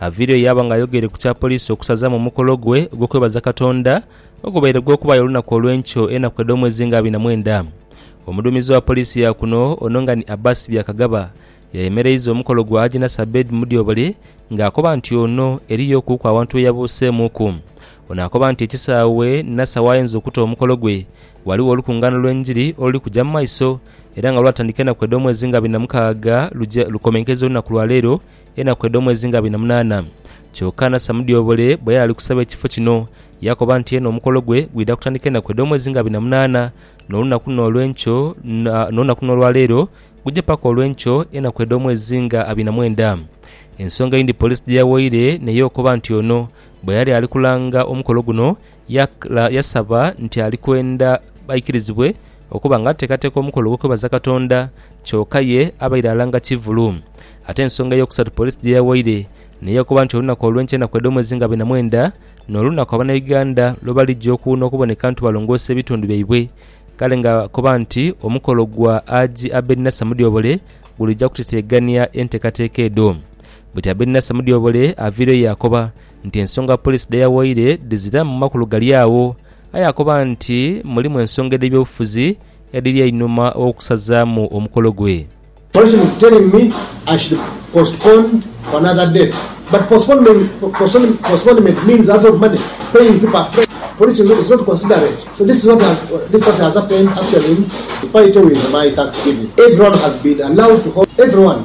Aviireyo yaaba ng'ayogeire ku kya poliisi okusazaamu omukolo gwe ogw'okwebaza Katonda ogubaire gw'okubaayo olunaku olw'enkyo enaku edh'omwezi nga abiri na mwenda. Omuduumizi wa poliisi ya kuno ono nga ni Abbas Byakagaba yayemereiza omukolo gwa Agnes Abeid Mudyobole nga akoba nti ono eriyo kuuku awantu we yabuuseemuuku. Ono akoba nti ekisaawe Nasser w'ayinza okuta omukolo gwe ghaligho olukungaana lw'enjiri oluli kuja mu maiso era nga lwatandika enaku edh'omwezi nga abiri na mukaaga luja lukomenkeza olunaku lwa leero enaku edh'omwezi nga abiri na munaana. Kyoka na Samudyobole bwe yali ali kusaba ekifo kino, yaakoba nti yena omukolo gwe gwidha kutandika enaku edh'omwezi nga abiri na munaana, n'olunaku luno olw'enkyo, na, n'olunaku luno olwa leero, guje paka olw'enkyo, enaku edh'omwezi nga abiri na mwenda. Ensonga eyindi poliisi gye yawoire n'eyo okoba nti ono bwe yali ali kulanga omukolo guno, Yaghala yasaba nti ali kwenda baikirizibwe okuba nga ateekateeka omukolo ogw'okwebaza Katonda, kyoka ye abaire alanga kivulu. Ate ensonga ey'okusatu poliisi gye yawaire n'eyakoba nti olunaku olw'enkya enaku edh'omwezi nga abiri na mwenda n'olunaku Abanauganda lwe baligya okuwuuna okuboneka nti balongoosa ebitundu byaibwe kale ng'akoba nti omukolo gwa Haji Abed Nasser Mudyobole gulija kuteteegania enteekateeka edho. Bwetyo Abed Nasser Mudyobole aviireyo yaakoba nti ensonga poliisi dhe yawaire dhizira mu makulu gali agho, aye akoba nti mulimu ensonga edh'ebyobufuzi edhiri einhuma gh'okusazaamu omukolo gwe.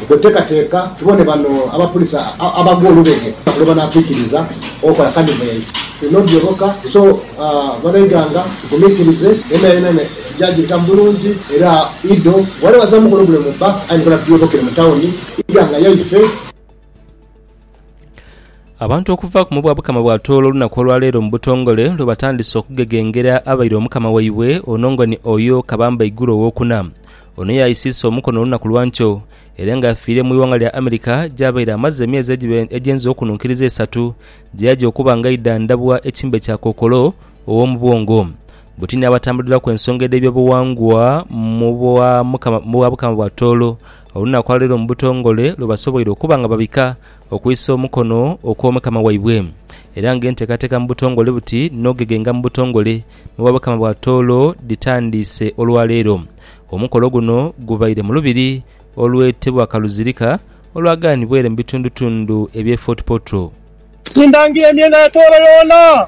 Bwetuteekateeka tubone bano abapulisa abagwa olubege lwebanaatwikiriza okola Kadiveri, tulina odhyoboka. So banaiganga tugumikirize yonayona tujagibitamu bulungi era Ido bwaliba azamu mukono gule mu bba aye nikola tudyobokere mu tawuni iganga yaife. Abantu okuva ku mubwa bukama bwa Tooro olunaku olwaleero mu butongole lwe batandise okugegengera abaire omukama waibwe ono nga ni Oyo Kabamba Iguru owokuna. Ono yaisiisa omukono olunaku lwankyo era nga yafiire mu ighanga lya America gyabaire amaze emyezi egiba egyenze okununkiriza esatu gyeyaja okuba nga aidhandhabwa ekimbe kya kookolo owomubwongo. Buti ni abatambuliraku ensonga edhebyobuwangwa mu bwa bukama bwa Tooro olunaku lwa leero mu butongole lwe basoboire okuba nga babika okwisa omukono okw'Omukama waibwe, era nga enteekateeka mu butongole buti n'ogegenga mu butongole mu Bwabakama bwa Tooro dhitandiise olwa leero. Omukolo guno gubaire mu lubiri olwetebwa Kaluzirika olwagaanibwaire mu bitundutundu eby'e Fort Portal. Tindhangira emyenda ya Tooro yoona,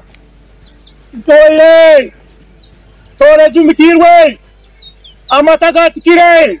ntooire, Tooro ejumikiirwe, amata gaatikire.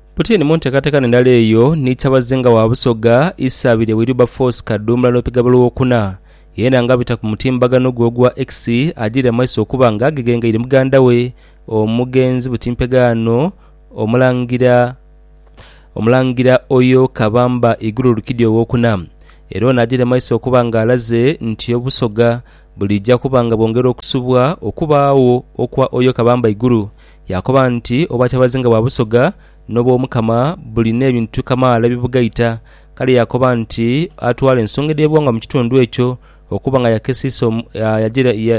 Putini mu nteekateeka endala eyo ni kyabazinga wa Busoga Isabirye Wilberforce Kaduumula Nopigabo Lwokuna, yeena nga abita ku mutimbagano gwe ogwa X ajiire amaiso okuba nga ageghengeire muganda we omugenzi butimpeghaano Omulangira Omulangira Oyo Kabamba Iguru Rukidi Owokuna era ono ajiire maiso okuba nga alaze nti Obusoga buliija kuba nga bwongera okusubwa okubaagho okwa Oyo Kabamba Iguru Yaakoba nti, Obwakyabazinga bwa Busoga n'obw'Omukama buli n'ebintu kamaala ebibugaita. Kale yaakoba nti atwale ensonga edh'ebighangwa mu kitundu ekyo okuba nga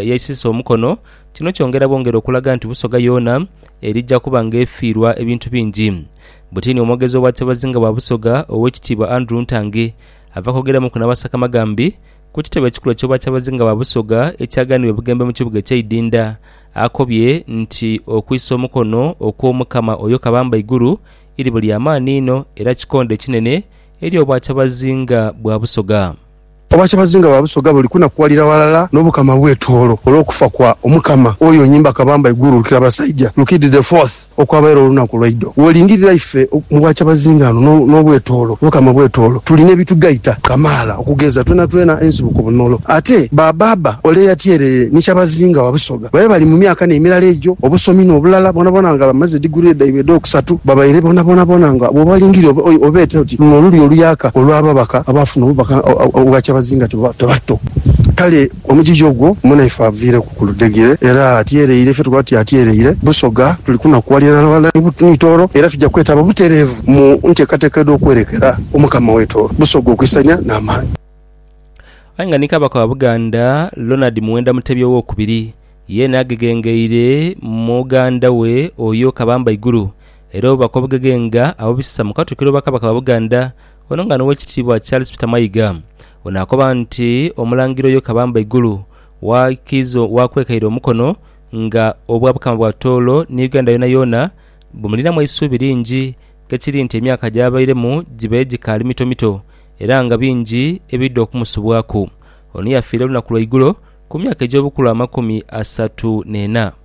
yaisiisa omukono. Kino kyongera bwongera okulaga nti Busoga yoona erija kuba ng'efiirwa ebintu bingi. Butini omwogezi w'Obwakyabazinga bwa Busoga, Oweekitiibwa Andrew Ntange, ava kwogeramuku n'Abasakamaghambi Ku kitebe ekikulu eky'Obwakyabazinga bwa Busoga ekyaghanibwa e Bugembe mu kibuga eky'e Idinda, akobye nti okwisa omukono okw'Omukama oyo Kabamba Iguru, iribo lya maani inho era kikondho ekinene eri Obwakyabazinga bwa Busoga. Obwakyabazinga bwa Busoga buli kunakuwalira ghalala n'Obukama bw'e Tooro olw'okufa kwa Omukama oyo Nyimba Kabamba Iguru Lukirabasaija Rukidhi the Fourth. Okwabaire olunaku lwaidho wolingirira ife mu bwakyabazinga ano n'obwetoolo, Mukama obwetoolo tulina ebitugaita kamaala okugeza twenatwena ensibuko bunolo. Ate ba baaba ole eyatyerere ni kyabazinga wa Busoga babe bali mu myaka n'emirala egyo obusomi n'obulala bwonabwona nga bamaze digurire dhaibwe edh'okusatu babaire bonabonabona nga bwobalingirira obeete oti luno olulyo oluyaka olw'ababaka abaafuna obubaka obwa kyabazinga tebatto kale Omugigi ogwo munaife aviireku ku ludhegere era atyereire. Ife tukoba tuti atyereire Busoga. Tuli kunakuwalira na balala ni Tooro era tuja kwetaba butereevu mu nteekateeka edh'okwerekera Omukama we Tooro Busoga okwisania n'amaani. Aye nga ni Kabaka wa Buganda Lonard Muwenda Mutebi Ow'okubiri yeene agegengeire muganda we oyo Kabamba Iguru era obubaka obugegeenga abubisa mu Katwikiro wa Kabaka wa Buganda Ono nga n'Owekitiibwa Charles Peter Mayiga ono akoba nti Omulangira Oyo Kabamba Igulu wakiiza wakwekaire omukono nga Obwabukama bwa Tooro ni Uganda yoonayoona bumulinamu eisuubi lingi kekiri nti emyaka gyabairemu gibaire gikaali mitomito era nga bingi ebidha okumusubwaku. Ono yafiira olunaku lwaigulo ku myaka egy'obukulu amakumi asatu n'ena.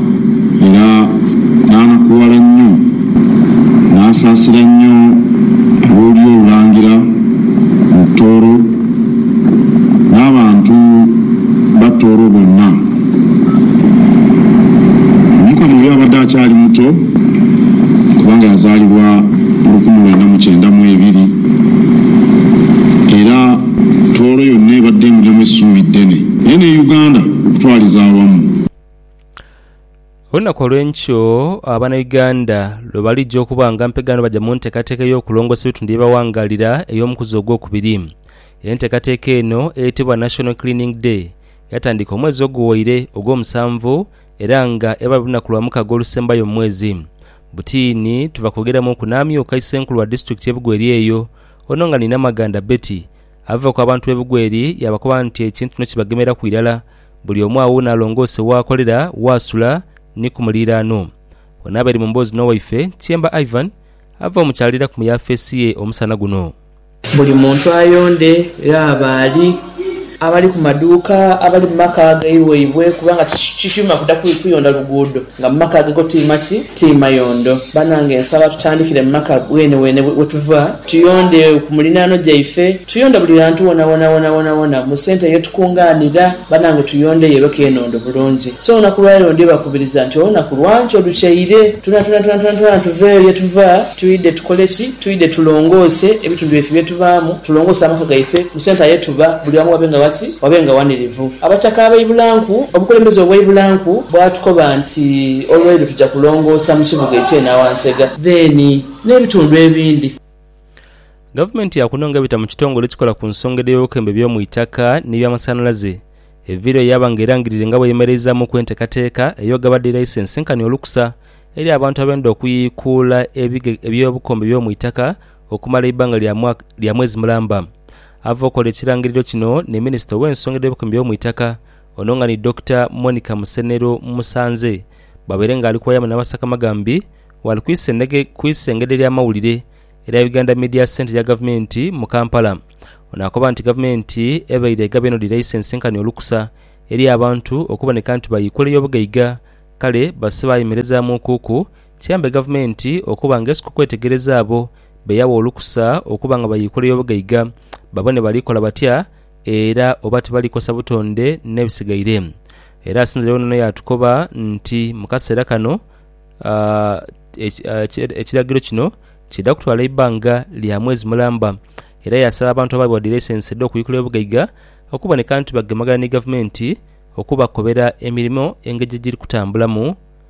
Era n'anakuwala nnyo, n'asaasira nnyo ab'olulyo olulangira mu Tooro, n'abantu ba Tooro bonna. Omukama oyo abadde akyali muto, kubanga yazaalibwa mu lukumi lwenda mu kyenda mu ebiri, era Tooro yonna ebadde emulyamu essuubi ddene, naye ne Uganda okutwaliza awamu. Olunaku olw'enkyo Abanauganda lwe balidhia okuba nga mpega nga baja mu ntekateka ey'okulongosa ebitundu bye bawangaalira ey'omukuzi ogwokubiri. Entekateka eno eyetebwa National Cleaning Day yatandika omwezi oguwaire ogw'omusanvu era nga eba buli lunaku lwa mukaga olusembayo mu mwezi. Butiini tuva kwogeramu ku n'amyuka Isenkulu wa Disitulikiti ye Bugweri eyo ono nga ni Namaganda Betty avaku abantu be Bugweri yabakoba nti ekintu kino kibagemeraku irala Buli omu agho n'alongoose w'akolera, w'asula, ni ku muliiraano. Bwe naabaire mu mboozi n'owaife, Tyemba Ivan ava omukyalira ku mu yaafeesi ye omusana guno. Buli muntu ayonde, ghaba ali, abali ku maduuka, abali mu maka agaibweibwe kubanga kikyuma kuda kuyonda luguudo. Nga mu maka agago ti maki, ti mayondo. Banange nsaba tutandikire mu maka weneweene we tuva, tuyonde ku muliraano gyaife, tuyonde buli ghantu wonawona, wonawonawona mu sente ye tukunganira. Banange tuyondeyo ebe kenondo bulungi. So olunaku lwa leero ndibakubiriza nti olunaku lwa nkyo lukyeire, twonatwonatwonatwonatwona tuveeyo ye tuva, twidhe tukole ki? Twidhe tulongoose ebitundu byaife bye tuvaamu, tulongoose amaka gaife. Mu centre ye tuba, buli wamu wabe nga waki? Wabe nga wanirivu. Abataka abaibulanku, obukulembeze obwaibulanku bwatukoba nti olweiro tuja kulongoosa mu kibuga ekye Nawansega then n'ebitundu ebindi. Gavumenti ya kuno nga ebita mu kitongole ekikola ku nsonga edh'ebyobukembo eby'omu itaka n'ebyamasanhalaze e Virio yaaba nga erangirire nga bweyemereizaamuku enteekateeka ey'ogaba dhi laisensi nkani olukusa eri abantu abenda okuyiikuula eby'obukombe by'omu itaka okumala eibanga lya mwaka lya mwezi mulamba. Ava okola ekirangiriro kino ni Minisita ow'ensonga edh'obukuumi by'omuitaka, ono nga ni Dokita Monica Musenero Musanze bwabaire nga ali kuwayamu n'abasakamagambi waali ku isengedhe ly'amawulire erya Uganda Media Centre erya Gavumenti mu Kampala. Ono akoba nti Gavumenti ebaire egabye eno dhi laisensi nkani olukusa eri abantu okuboneka nti bayiikula ey'obugaiga kale basse baayemerezamuukuku Kiyambe gavumenti okuba nga esika okwetegereza abo be yawa olukusa okuba nga bayiikula ey'obugaiga babone bali kola batya era oba tibali kosa butonde n'ebisigaire. Era asinziregho n'ono yaatukoba nti mu kaseera kano ekiragiro kino kiidha kutwala eibbanga lya mwezi mulamba era yaasaba abantu abaweebwa dhi laisensi edh'okuyikula ey'obugaiga okuboneka nti bagemagana ni gavumenti okubakobera emirimo engeri gyegiri kutambulamu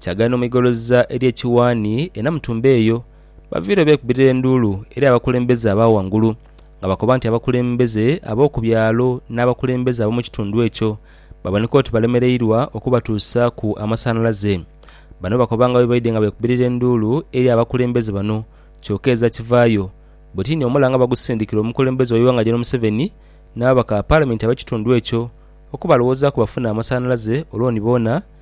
Kyagala n'omwigoloza eri ekiwaani e Namutumba eyo, baviireyo beekubirira enduulu eri abakulembeze aba ghangulu nga bakoba nti abakulembeze ab'oku byalo n'abakulembeze ab'omu kitundu ekyo baboneka oti balemereirwa okubatuusaaku amasanhalaze. Bano bakoba nga bwe baidhye nga beekubirira enduulu eri abakulembeze bano kyoka eza kivaayo buti ni omulanga bagusindikira omukulembeze w'eighanga Gen Museveni n'ababaka ba Palamenti ab'ekitundu ekyo okubalowozaaku bafune amasanhalaze olwo ni boona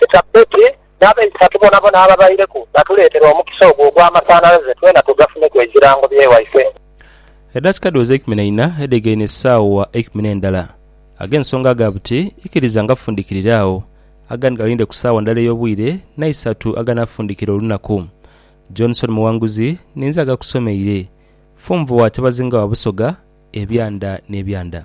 Sita Betty n'abaisatu bonabona ababaireku batuleetera omukisa ogwo ogw'amasanhalaze twena tugafuneku ekirango bye waife. Edakika dhooze eikumi na ina edhegaine esaawa eikumi n'endala, ag'ensonga aga buti ikiriza nga fundikirire agho, agandi galinde ku saawa ndala ey'obwire n'eisatu aganafundikira olunaku. Johnson Muwanguzi ninze agakusomeire. Funvua Tebazinga wa Busoga, Ebyanda n'ebyanda.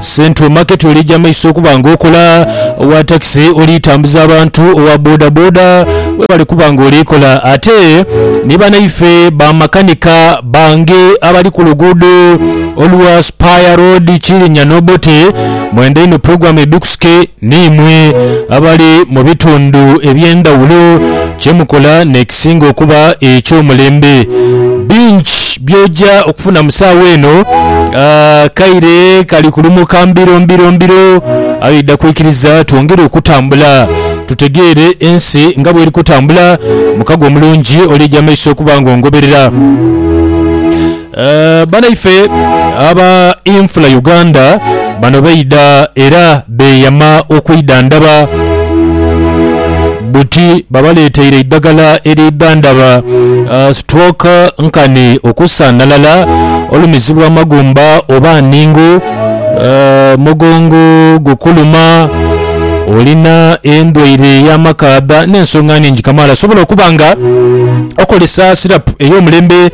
Central Market olija maiso okuba nga okola, owa takisi oli tambuza abantu, owa boda boda webale kuba nga oli kola ate ni banaife ba makanika bange abali ku luguudo olwa Spire Road Kirinnya n'Obote mwenda inho pulogulaamu ebikusike niimwe abali mu bitundu eby'endhawulo. Kye mukola n'ekisinga okuba eky'omulembe. Bingi by'oja okufuna mu saawa eno. Akaire kali kulumuka mbiro mbiro mbiro, aye oidha kwikiriza twongere okutambula tutegeere ensi nga bw'eri kutambula. Mukago omulungi olija mu maiso okuba ng'ongoberera. Banaife aba Infula Uganda bano baidha era beeyama okwidhandhaba buti babaleeteire eidhagala eridhandhaba stroke, nkani okusaanhalala, olumizibwa amagumba oba nningu, omugongo gukuluma, olina endwaire y'amakaadha n'ensonga nhingi kamaala. Osobola okuba nga okozesa sirapu ey'omulembe.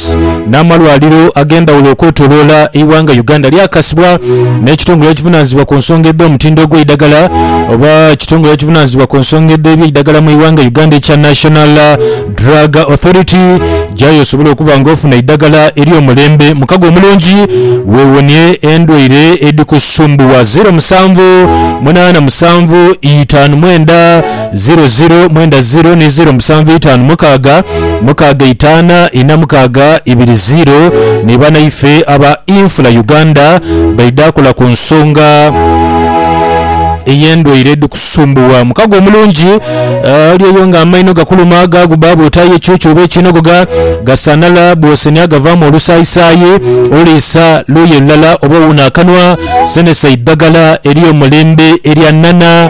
Hospitals n'amalwaliro ag'endhawulo okwetoloola eighanga Uganda lyakasibwa n'ekitongole ekivunaanyizibwa ku nsonga edh'omutindo ogw'eidhagala oba ekitongole ekivunaanyizibwa ku nsonga edh'ebyeidhagala mu ighanga Uganda ekya National Drug Authority gyayo osobole okuba nga ofuna eidhagala ery'omulembe mu kago omulungi weewonie endwaire edhikusumbuwa. Ziro musanvu munaana musanvu itaanu mwenda. ziro ziro mwenda ziro ni ziro musanvu itaanu mukaaga mukaaga itaana ina mukaaga ibiri ziro ni banaife aba Infula Uganda baidha kola ku nsonga ey'endwaire edhikusumbuwa mukago omulungi eh, oli eyo nga amaino gakuluma gaaguba bw'otaayo ekyuki oba ekinogoga gasaanala bw'osenia gavaamu olusaayisaayi oliisa luuyi lulala oba owuuna akanwa senesa eidhagala ery'omulembe erya nana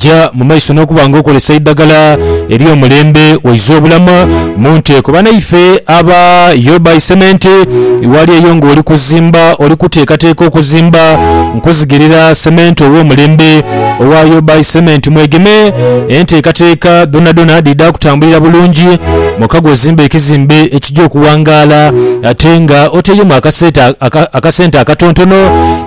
Ja mu maiso n'okuba nga okozesa eidhagala ery'omulembe oize obulamu mu nteeko. Banaife aba Your Buy Cement ghali eyo nga oli kuzimba, oli kuteekateeka okuzimba, nkuzigirira sementi ow'omulembe owa Your Buy Cement. Mwegeme, enteekateeka dhonadhona dhidha kutambulira bulungi mwokagwo ozimbe ekizimbe ekija okuwangaala ate nga otairemu akasente akatontono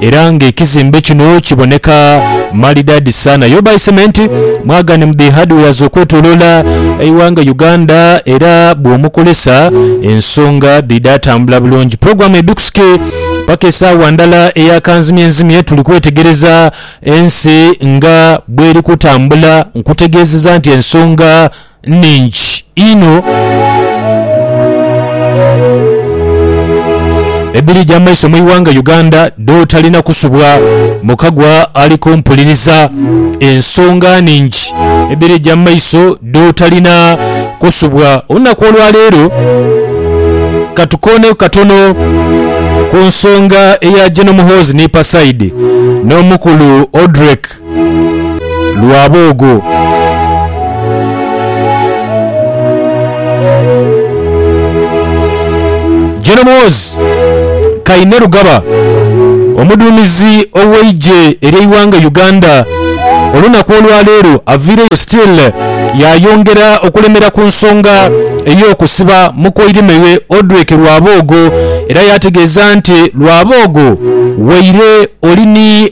era nga ekizimbe kino kiboneka Maridadi sana yo by cement mwagane mu dhi hardwares okwetolola eighanga Uganda era bwomukolesa ensonga dhidha tambula bulungi program ebikusuke paka esaawa ndala eya kanzimye nzimye tuli kwetegereza ensi nga bweri kutambula nkutegezeza nti ensonga nnhingi inho edhirija amaiso mu ighanga Uganda dhotalina kusubwa mukagwa ali kumpuliriza. Ensonga nnhingi edhirija mu maiso dhotalina kusubwa. Olunaku olwaleero katukooneku katono ku nsonga eya Gen Muhoozi ni Pasaidi n'omukulu Odrek lwa boogo-Gen Muhoozi Kainerugaba, omuduumizi ow'eigye ery'eighanga Uganda, olunaku olwaleero aviireyo still yaayongera okulemera ku nsonga ey'okusiba mukoirimeghe Odrek Rwaboogo era yaategeeza nti Rwaboogo waire oli ni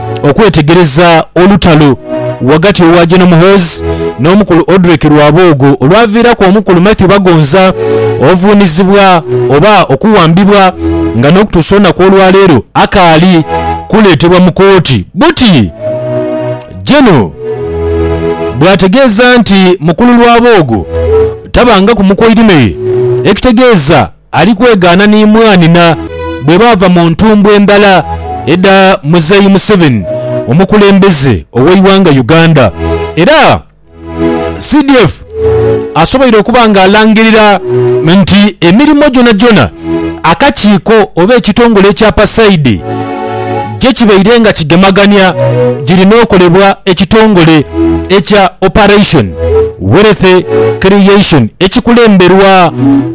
okwetegereza olutalo ghagati wa Gen Muhoozi n'omukulu Odrick Rwaboogo olwaviiraku omukulu Mathew Bagonza ovuunizibwa oba okuwambibwa nga n'okutuusa olunaku olwaleero akaali kuleetebwa mu kooti buti Gen bw'ategeeza nti mukulu Rwaboogo tabangaku mu Koirimeri ekitegeeza Ali kwegaana ni mwaani na bwe baava mu ntumbwe ndala edha Muzeeyi Museveni omukulembeze ow'eighanga Uganda era CDF asoboire okuba nga alangirira nti emirimo gyonagyona akakiiko oba ekitongole ekya Pasaide gye kibaire nga kigemagania girina okolebwa ekitongole ekya Operation Wealth Creation ekikulemberwa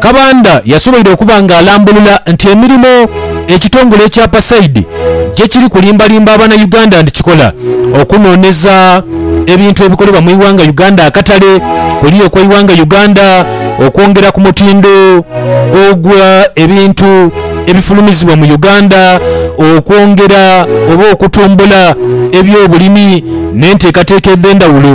Kabanda yasoboire okuba nga alambulula nti emirimo ekitongole ekya Pasaidi gyekiri kulimbalimba Abanauganda nti kikola okunooneza ebintu ebikolebwa mu ighanga Uganda akatale kuli okweighanga Uganda okwongera ku mutindo ogwa ebintu ebifulumizibwa mu Uganda okwongera oba okutumbula ebyobulimi n'enteekateeka edhendhawulo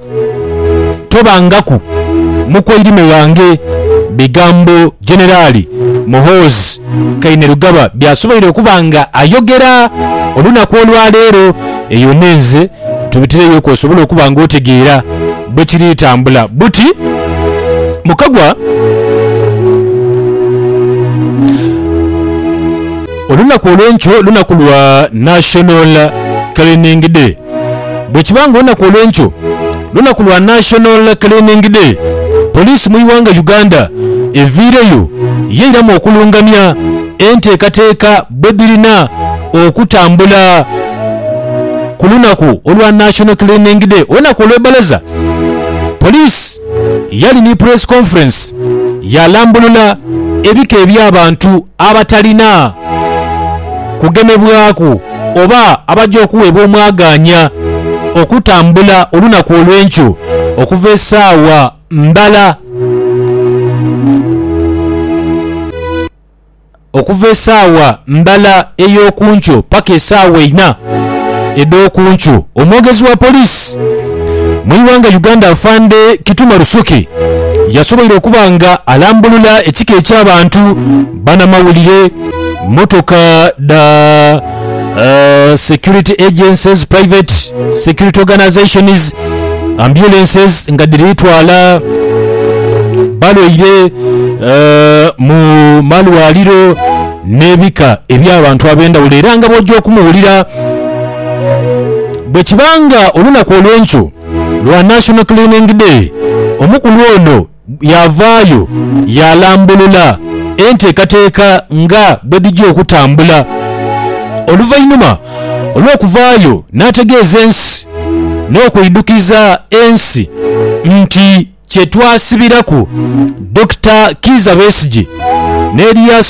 tobangaku mukwairime wange, bigambo Generali Muhoozi Kainerugaba byasoboire okuba nga ayogera olunaku olwaleero. Eyo n'enze tubitireyo ku osobole okuba nga otegeera bwekiri tambula. Buti mukagwa olunaku olwenkyo lunaku lwa National Cleaning Day. Bwekiba nga olunaku olwenkyo lunaku lwa National Cleaning Day, poliisi mu ighanga Uganda eviireyo yeiramu okulungamya enteekateeka bwedhirina okutambula ku lunaku olwa National Cleaning Day. Olunaku olwebbalaza poliisi yali ni press conference yalambulula ebika ebyabantu abatalina kugemebwaku oba abaja okuweebwa omwagaanya okutambula olunaku olw'enkyo okuva esaawa ndala okuva esaawa ndala ey'okunkyo paka esaawa eina edh'okunkyo, omwogezi wa poliisi. Mu ighanga Uganda Afande Kituma Rusoke yasoboire okuba nga alambulula ekika eky'abantu, banamawulire, mmotoka dha security agencies, private security organisations, ambulances nga dhiri twala balwaire mu malwaliro n'ebika eby'abantu ab'endhawulo era nga bw'oja okumuwulira Bwe kiba nga olunaku olw'enkyo lwa National Cleaning Day, omukulu ono yaavaayo yaalambulula enteekateeka nga bwedhija okutambula. Oluvainhuma olw'okuvaayo n'ategeeza ensi n'okwidhukiza ensi nti kyetwasibiraku Dokita Kiiza Besigye n'Erias